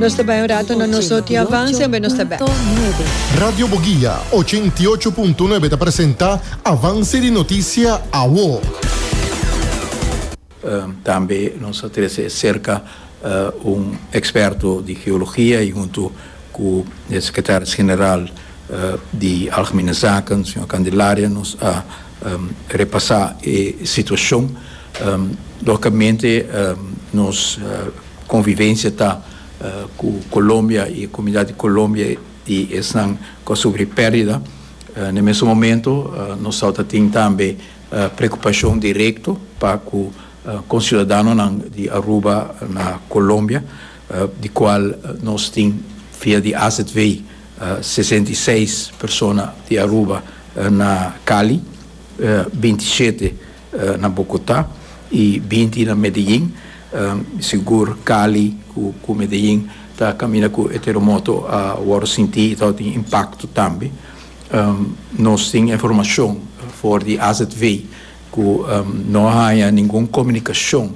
Nos ta bai un rato na nos Noti Avance, enben nos ta bek. Radio Boguia ochen i ocho punto nuebe ta presenta Avance di Noticia awo. Tambe nos a trece e cerca un experto di geologia y hunto cu e secretaris general di Algemene Zaken, señor Candelaria, nos a repasá e situashon. Lógikamente nos konvivensia ta ku Kolombia i e komunidat di Kolombia i esnan ku a sufri pèrdida. Na e mesun momentu nos tabata tin tambe preokupashon direkto pa ku konsiudadanonan di Aruba na Kolombia, di kual nos tin via di AZV. sesenta i seis persona di Aruba na Cali, binti shete na Bogota y binti na Medellin. Sigur Cali cu Medellin ta caminda cu e terremoto a worde sinti y ta tin impacto tambe. Nos tin e informacion for di AZV cu no a haya ningun comunicacion.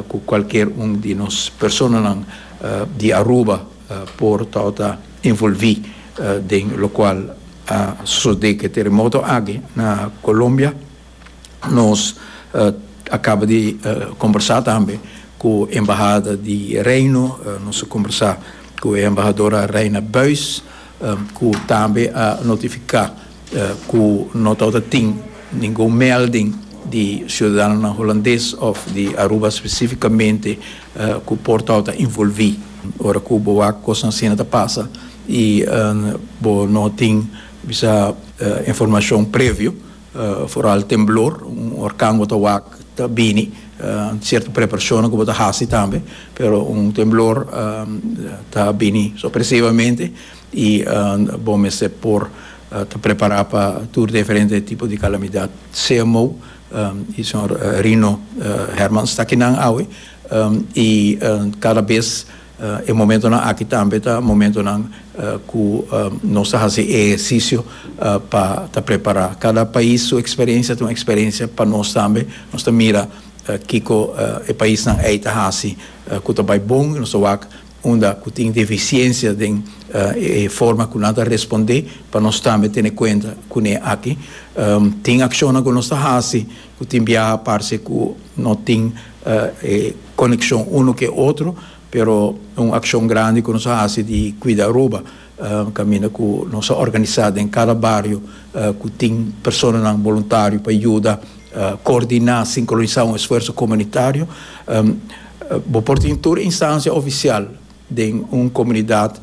Cu cualkier un di nos personanan di Aruba por tao ta envolvi den locual a sosode cu e teremoto aki na Colombia. Nos a caba di combersa tambe cu embahada di Reino, nos a combersa cu e embahadora Reina Buijs cu tambe a notifica. ku no tabata tin ningun melding di siudadanonan Hulandes òf di Aruba spesífikamente ku por tabata involví ora ku bo wak kosnan asina ta pasa i bo no tin bisha informashon previo foral temblor un orkan bo ta wak ta bini sierto preparashonnan ku bo ta hasi tambe pero un temblor ta bini sopresivamente. Y bo mester por ta prepara pa tur diferente tipo di calamidad. CMO y señor Rino Hermans ta akinan awe y cada bes e momentonan aki tambe ta momentonan cu nos ta haci e ehercicio pa ta prepara. Cada pais su experiencia ta un experiencia pa nos tambe. Nos ta mira kico e paisnan ey ta haci cu ta bay bon y nos ta wak unda cu tin deficiencia den e forma cu nan ta responde, pa nos tambe tene cuenta cune aki. Tin accionnan cu nos ta haci cu tin biaha parce cu no tin e coneccion uno cu e otro, pero un accion grandi cu nos a haci di cuida Aruba. Caminda cu nos a organisa den cada bario cu tin personanan boluntario pa yuda coordina, sincronisa un esfuerso comunitario. Bo por tin tur instancia oficial den un comunidad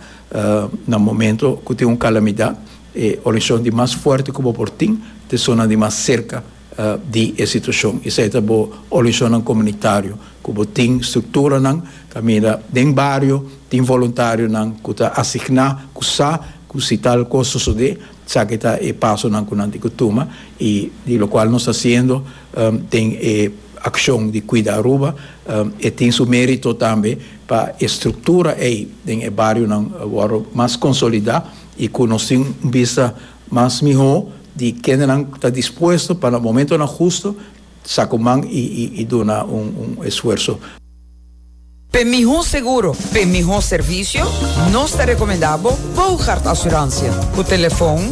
na momento cu tin un calamidad. E organisacion di mas fuerte cu bo por tin ta esun nan di mas cerca di e situashon. Esei ta bo organisacionnan comunitario cu bo tin structuranan caminda den bario tin voluntarionan cu ta asigna cu sa cu si tal cos sosode esaki ta e pasonan cu nan tin cu tuma y di locual nos ta haciendo den e accion di cuida Aruba e tin su merito tambe pa e structura ei den e barionan worde mas consolida y cu nos tin un bista Mas mihó di kendenan ku ta dispuesto pa na momentonan hustu sa ku man i duna un esfuerso. Pa e mihó seguro, pa e mihó servisio, nos ta rekomendá bo Bougaard Asuransia ku telefon